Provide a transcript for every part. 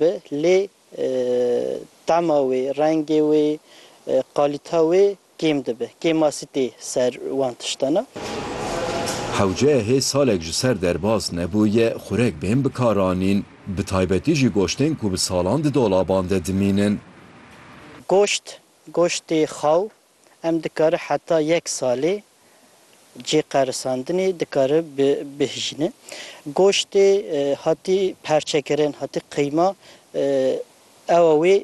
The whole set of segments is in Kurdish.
be lê tema wê, rengê wê, qalîta wê kêm dibe. Kêmasî tê ser wan tiştan a. Hewceye hê salek ji ser derbas nebûye xurek bên bikaranîn, bi taybetî jî goştên ku bi salan di dolaban de dimînin. Goşt, goştê xaw, Em dikare heta yek salê cê qerisandinê dikare bihijîne. Goştê hatî perçekirin, hatî qîma ewa wê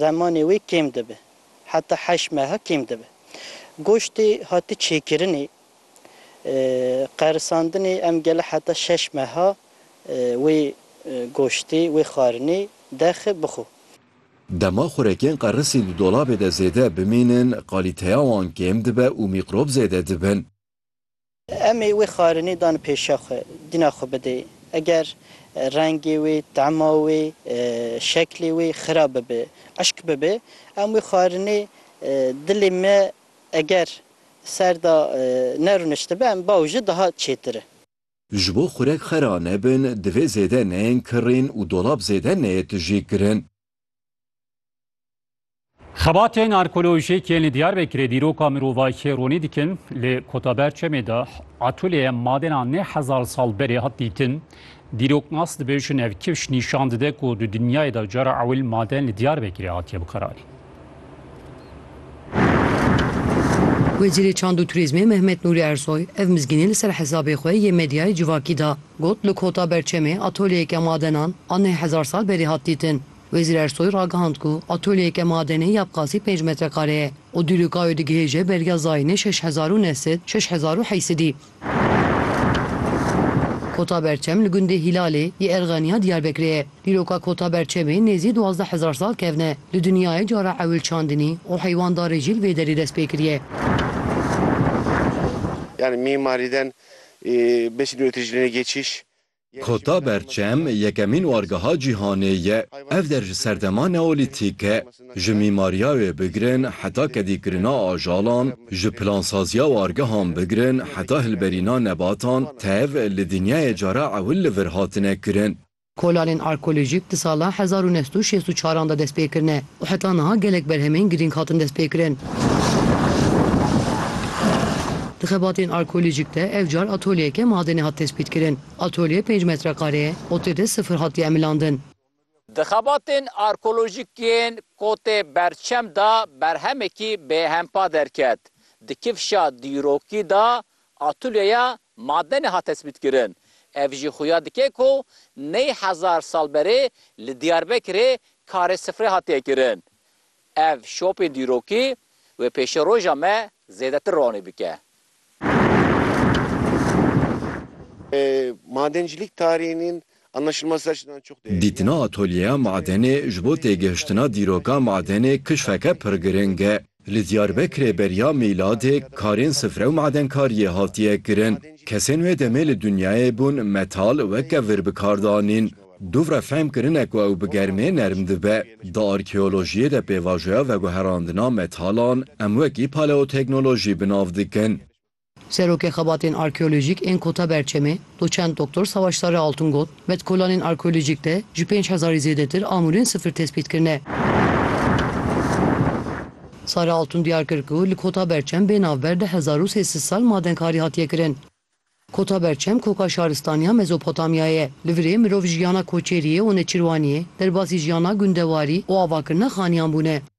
zemanê wê kêm dibe. Heta heşt meha kêm dibe. Goştê hatî çêkirinê, qerisandinê em gele heta şeş meha wê goştê, wê xwarinê derxe bixwe. Dema xurekên qerisî di dolabê de zêde bimînin, qalîteya wan kêm dibe û mîqrob zêde dibin. Em ê wê xarinê dan pêşiya xwe, dîna xwe bidê. Eger rengê wê, tema wê, şeklê wê xirab bibe, eşk bibe, em wê xarinê dilê me eger ser de nerûniştibe, em bawji daha çêtir e. Ji bo xurek xera nebin, divê zêde neyên kirrîn û dolab zêde neyê tijîkirin. Xebatên arkeolojîk yên li Diyarbekirê dîroka mirovahiyê ronî dikin, li Kotaberçemê de atolyeya madena neh hezar sal berê hat dîtin. Dîroknas dibêjin ev kifş nîşan dide ku di dinyayê de cara ewil maden li Diyarbekirê hatiye bikarandin. Wezîrê Çand û Turîzmê Mehmet Nûrî Ersoy ev mizgînê li ser hesabê xwe yê medyayê civakî da. Got, Li Kota Berçemê atölyeyeke madenan a neh hezar sal berî hat dîtin. Wezîr Ersoy ragihand ku atölyeyeke madenê ya bi qasî pênc metrekare ye û dûrîka wê digihêje beriya zayînê şeş hezar û neh sed, şeş hezar û heysedî. Kota Berçem li gundê Hîlalê yê Erxeniya Diyarbekirê ye. Dîroka Kota Berçemê nêzî duwazdeh hezar sal kevne. Li dinyayê cara ewil çandinî û heywandarê jî li vê derê dest pê kiriye. Kota Berçem yekemîn wargeha cîhanê ye. Ev der ji serdema neolîtîk e. Ji mîmariya wê bigirin heta kedîkirina ajalan, ji plansaziya wargehan bigirin heta hilberîna nebatan, tev li dinyayê cara ewil li vir hatine kirin. Kolalên arkeolojîk di sala hezar û neh sed û şêst û çaran de destpêkirine. û heta niha gelek berhemên girîng hatin destpêkirin. Di xebatên arkeolojîk de ev car atolyeyeke madenê hat tespîtkirin. Atolye pênc metreqare ye û tê de sifir hatiye emilandin. Di xebatên arkeolojîk yên Kotê Berçem de berhemekî bêhempa derket. Di kifşa dîrokî de Atûlyeya madenê hat hesbîtkirin. Ev jî xuya dike ku ney hezar sal berê li Diyarbekirê karê sifrê hatiye kirin. Ev şopên dîrokî wê pêşeroja me zêdetir ronî bike. Madencilîk tarînîn Dîtina atolyeya madenê ji bo têgihiştina dîroka madenê kişfeke pir giring e. Li Diyarbekirê beriya mîladê karên sifre û madenkariyê hatiye kirin. Kesên wê demê li dinyayê bûn metal weke vir bi kar danîn. Dûvre fehm kirine ku ew bi germê nerm dibe. Di arkeolojiyê de pêvajoya veguherandina metalan em wekî paleoteknolojî bi nav dikin. Serokê Xebatên Arkeolojîk ên Kota Berçemê, Doçent Doktor Savaş Sarı Altun got, Betkolanên arkeolojîk de ji pênc hezarî zêdetir amûrên sifir tespît kirine. Sarı Altun diyar kir ku li Kota Berçem bê navber di hezar û sê sed sal madenkarî hatiye kirin. Kota Berçem koka şaristaniya Mezopotamyayê ye. Li virê mirov jiyana koçêriyê û neçirwaniyê, derbasî jiyana gundewarî û avakirina xaniyan bûne.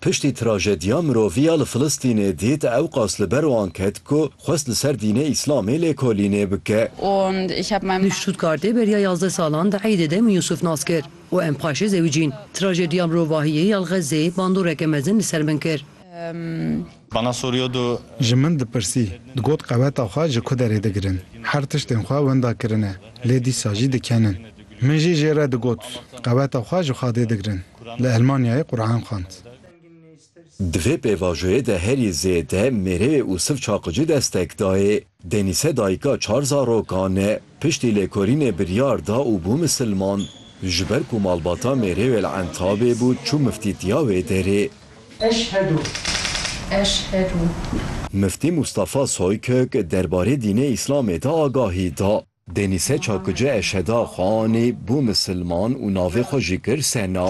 Piştî trajediya mirovî ya li Filistînê dît, ew qas li ber wan ket ku xwest li ser dînê Îslamê lêkolînê bike. Li Stuttgartê beriya yazdeh salan di eydê de min Yusuf nas kir û em paşê zewicîn. Trajediya mirovahiyê ya li Xezzeyê bandoreke mezin li ser min kir. Bana soruyordu. Ji min dipirsî, digot qeweta xwe ji ku derê digirin. Her tiştên xwe wenda kirine, lê dîsa jî dikenin. Min jî jê re digot, qeweta xwe ji xadê digirin. Li Elmanyayê Quran xwend. Di vê pêvajoyê de herî zêde mêreyê Usif Çaqici destek dayê. Denise dayika çar zarokan e. Piştî lêkolînê biryar da û bû misilman. Ji ber ku malbata Mêrewê li Entabê bû çû miftîtiya wê derê. Eşhedû eşhedû. Miftî Mustafa Soykök derbarê dînê Îslamê de agahî da. Denise Çakici eşheda xwe anî, bû misilman û navê xwe jî kir Sena.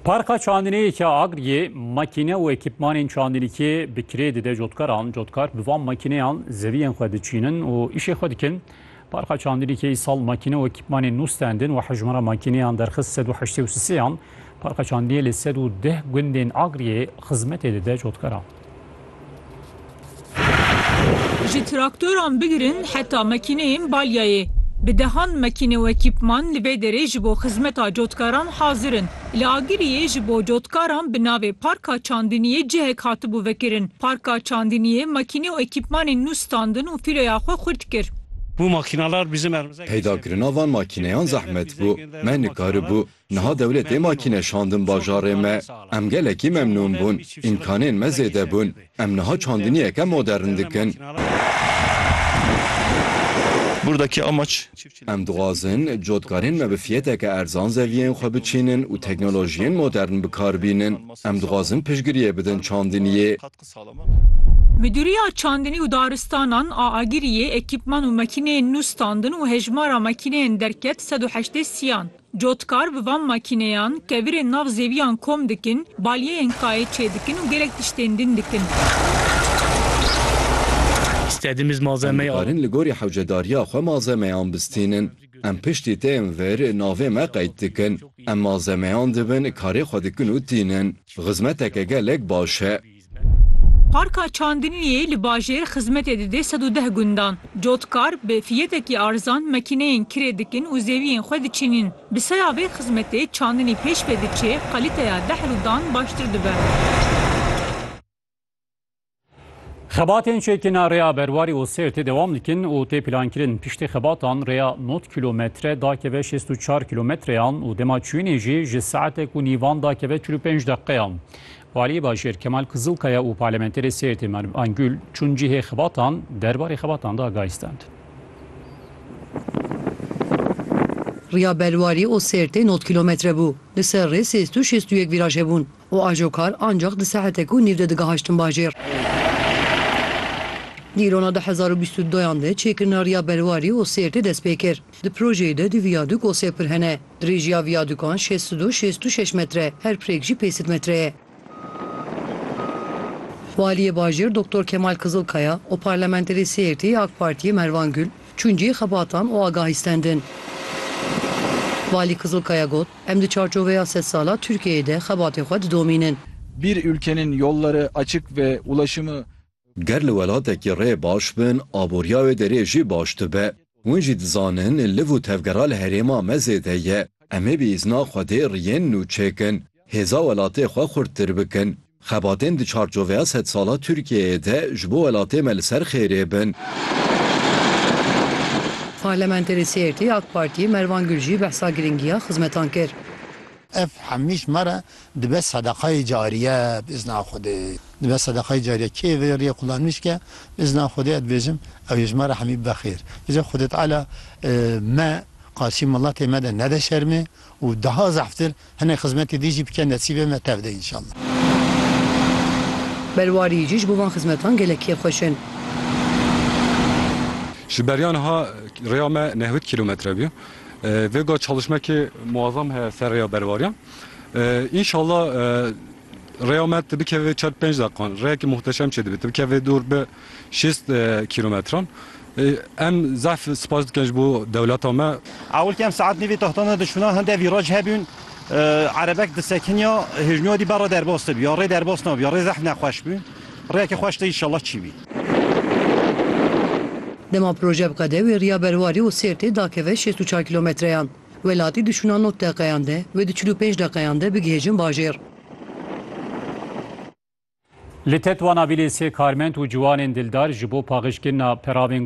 Parka çandinê ki Agriye makine û ekîpmanên çandinîkê bi kirê dide cotkaran. Cotkar bi van makineyan zeviyên xwe diçînin û îşê xwe dikin. Parka çandinîkê îsal makine û ekîpmanên nû stendin û hejmara makineyan derxist sed û heştê û sisêyan. Parka çandinê li sed û deh gundên Agriye xizmetê dide cotkaran. Ji traktoran bigirin heta makîneyên balyayê, bi dehan makîne û ekîpman li vê derê ji bo xizmeta cotkaran hazir in. Li Agiriyê ji bo cotkaran bi navê Parka Çandiniyê cihek hatibû vekirin. Parka Çandiniyê makîne û ekîpmanên nû standin û fîloya xwe xurt kir. Peyda kirina van makîneyan zehmet bû. Me nikaribû Niha dewletê ma kîne şandin bajarê me. Em gelekî memnûn bûn. Îmkanên me zêde bûn. Em niha çandiniyeke modern dikin. Burdaki amaç. Em dixwazin cotkarên me bi fiyeteke erzan zeviyên xwe biçînin û teknolojiyên modern bi kar bînin. Em dixwazin piştgiriyê bidin çandiniyê. Midûriya Çandinî û Daristanan a Agiriyê ekîpman û makîneyên nû standin û hejmara makîneyên derket sed û heştê siyan. Cotkar bi van makîneyan kevirên nav zêwiyan kom dikin, balyeyên kayê çêdikin û gelek tiştên din dikin. Em dikarin li gorî hewcedariya xwe malzemeyan bistînin. Em piştî tên vir navê me qeyd dikin. Em malzemeyan dibin karê xwe dikin û tînin. Xizmeteke gelek baş e. Parka Çandiniyê li bajêr xizmetê dide sed û deh gundan. Cotkar bi fiyetekî arzan makîneyên kirê dikin û zeviyên xwe diçînîn. Bi saya vê xizmetê çandinî pêş ve diçê, kalîteya dehr û dan baştir dibe. Xebatên çêkirina rêya Berwarî û Sêrtê dewam dikin û tê plankirin. Piştî xebatan rêya nod kîlometre dakeve şêst û çar kîlometreyan û dema çûyînê jî ji saetek û nîvan dakeve çil û pênc deqeyan. Waliyê bajêr Kemal Kizilkaya û parlementerê Sêrtê Merv Angul çûn cihê xebatan derbarê xebatan de agahî stend. Riya Belwarî û Sêrtê nod kîlometre bû. Li ser rê sêz tu şêst û yek vîraj hebûn û ajokar ancax di saetek û nîv de digihaştin bajêr. Dîrona du hezar û bîst û duyan de çêkirina Riya Belwarî û Sêrtê dest pê kir. Di projeyê de du viyadûk û sê pir hene. Dirêjiya viyadûkan şêst û du şêst û şeş metre, her pirêk jî pêncî metre ye. Waliyê Bajêr Doktor Kemal Kizilkaya û parlamenterê Sêrtê yê AK Partiyê Mervan Gul çûn cihê xebatan û agahîstendin. Walî Kizilkaya got, Em di çarçoveya sed sala Tirkiyeyê de xebatê xwe didomînin. Bir ülkenin yolları açık ve ulaşımı Ger li welatekî rê baş bin, aboriya wê derê jî baş dibe. Hûn jî dizanin liv û tevgera li herêma me zêde ye. Em ê bi îzna Xwedê riyên nû çêkin, hêza welatê xwe xurttir bikin. Xebatên di çarçoveya sedsala Tirkiyeyê de ji bo welatê me li ser xêrê bin. Parlamenterê Sêrtê, AK Partî, Mervan Gurjî behsa girîngiya xizmetan kir. Ev hemîş me re dibe sedeqayê cariye bi îzna Xwedê. Dibe sedeqayê cariye. Kê vê rêyê qulanîş ke bi îzna Xwedê ez dibêjim ew yê ji me re hemî bibe xêr. Bije Xwedê Teala me qarşî miletê me de nede şermê û daha zehftir hinek xizmetê dî jî bike nesîbê me tev de înşallah. Belwarî jî ji bo van xizmetan gelek kêfxweş in. Ji beriya niha rêya me nehwêd kîlometre bû. Vêga çalışmekê muazzam heye ser rêya berwariyan. Înşalla rêya me tu bikeve vê çar pênc deqiqan. Rêyekî muhteşem çê dibe. Tu bikeve vê dûr bi şêst kîlometran. Em zehf spas dikin ji bo dewleta me. Ewilkî em saet nîvê taxtan de dişûna hinde vîraj hebûn. Erebek disekiniya hêjnûyadî berre derbas dibû ya rê derbas nabû ya rê zehf nexweş bû. Rêyekî xweş de înşalla çîbî. Dema proje biqede wê riya Berwarî û Sêrtê dakeve şêst û çar kîlometreyan. Welatî di şûna nod deqeyan de wê di çil û pênc deqeyan de bigihêjin bajêr. Li Tetwana vîlê sê karmend û ciwanên dildar ji bo paxijkirina peravên